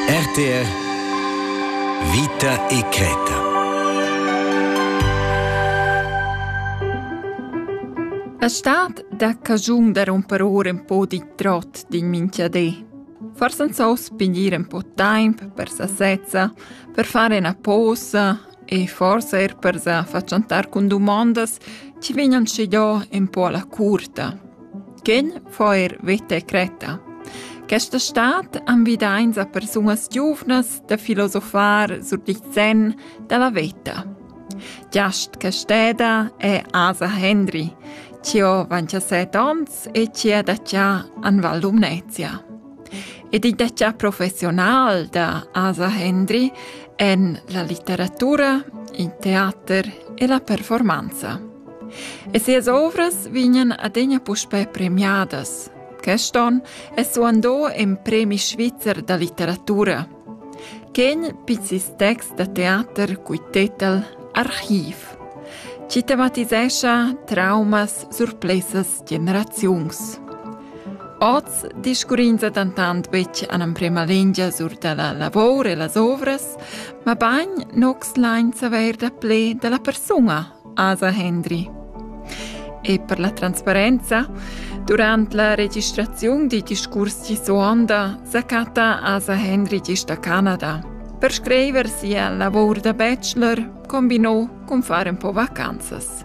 RTR Vita e creta A stad da cagiun da romper ora un po di trot din minchiadé. Forse non so spingire un po tempo per sasezza, per fare una posa e forse er per sa facciantar con domandas ci vegnan scegliò un po alla curta. Ken fa eir veta e cretta. Questa stad invidains a persunas giuvnas da filosofar sur il sen da la veta. Giast Casteda è Asa Hendry, chi ho 27 ons e chi ha da già an Val Lumnezia. Ed il detg professional da Asa Hendry en la litteratura, il teater e la performanza. E sias ovras vegnan adegna puspè premiadas. Queston è suandò en premi svizzer da litteratura. Quegl pizzis text da teater cui tetel Archiv. Ci tematisescha traumas, surplesas generaziuns. Oz discurrins dentant betg en emprema lingia sur da la lavor e las ovras, ma bagn nox lain saver da ple da la persuna, Asa Hendry. E per la transparenza, durant la registraziun di discurs di suonda sacata Asa Hendry gist a Canada. Per scriver sia lavor da bachelor combinò con fare un po' vacanzas.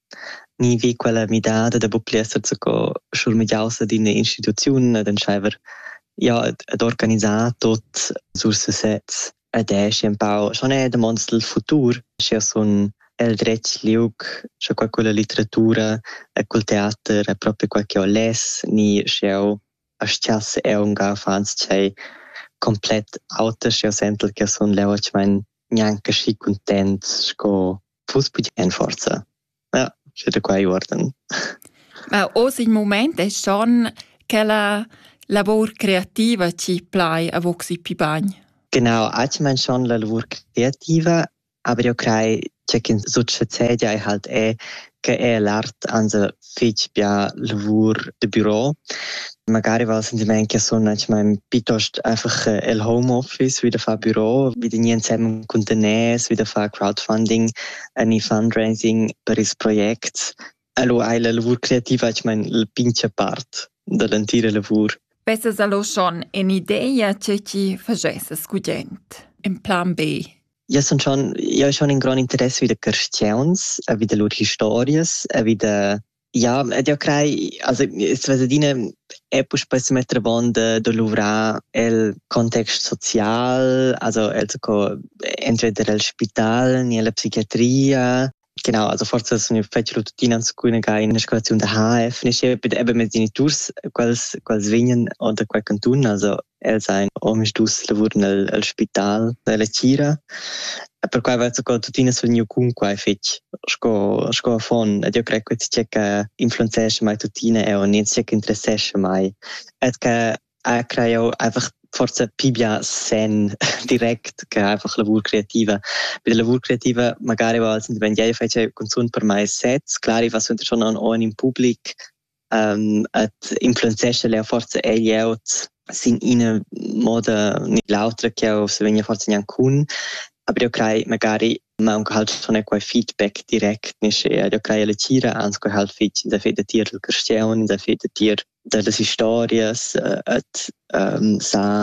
ni vi quella midada da buc pli esser zaco schurmegiaus ad ina instituziun ad entscheiver ja ad organisar tot sur sesez ed è schi empau schon è damonds il futur sche sun el dretg liug sche qual quella litteratura e col teater è proprio quel che ho les ni sche eu astiass eu unga fans ch'ei komplett auter sche eu sentel che sun leu gnanca schi content sco fuss buc en forza. Ja, sche da quei uorden. Ma oz il moment è schon che la lavor creativa ci plai a voxi pi bagn. Genau, ich meine schon la lavor creativa, aber io crei, c'è che succedia e halt è che è l'art anse fich bia lavur da büro. Magari val sentimaint che sun manchmal piuttost einfach äh, el Homeoffice wie da far Büro, wieder nie zusammen Containers, wieder far Crowdfunding, ani fundraising per ils projects. Allo hai la lavur creativa manchmal la pincha part dall'entira lavur. Vesses allo schon in ideia che ti fagesses gudent, in plan B? Jau sun schon, jau schon in grond interess vi da carstgauns, vi da lur historias, vi da... Ja, ed jau crei, also sves adina è puspei se metter avon da, da luvrar el context social, also el co entweder el spital ni la psichiatria, Genau, also forse sono fetschelo tuttina scuina che in escalaziun da HF finisce eben mit geniturs quels quels vegnan da quel cantun, also els ein omisdus lavuran el, el spital della Cira e per quai va sco tuttina sul gneu cun quai fetg sco sco affon ed io crei che tgei che influenzesce mai tuttina e o ne tgei che interessesce mai et che äh craj eu einfach forsa pii bia sen direct che einfach lavur creativa. Be la lavur creativa magari va al sentimaint ja, io fetscha cunzunt per mai sets, clar i va suenter schon an on in public, ähm, et influenzescha le forsa egl eot sin ina moda ni l'autra che eu se vegna forsa gnanc cun, aber eu craj magari Aunc halt schon è quei feedback direct ne schea da crai la tgira ans quei halt fetg da fe da tier il carstiaun da fe da tier da las historias et ähm sa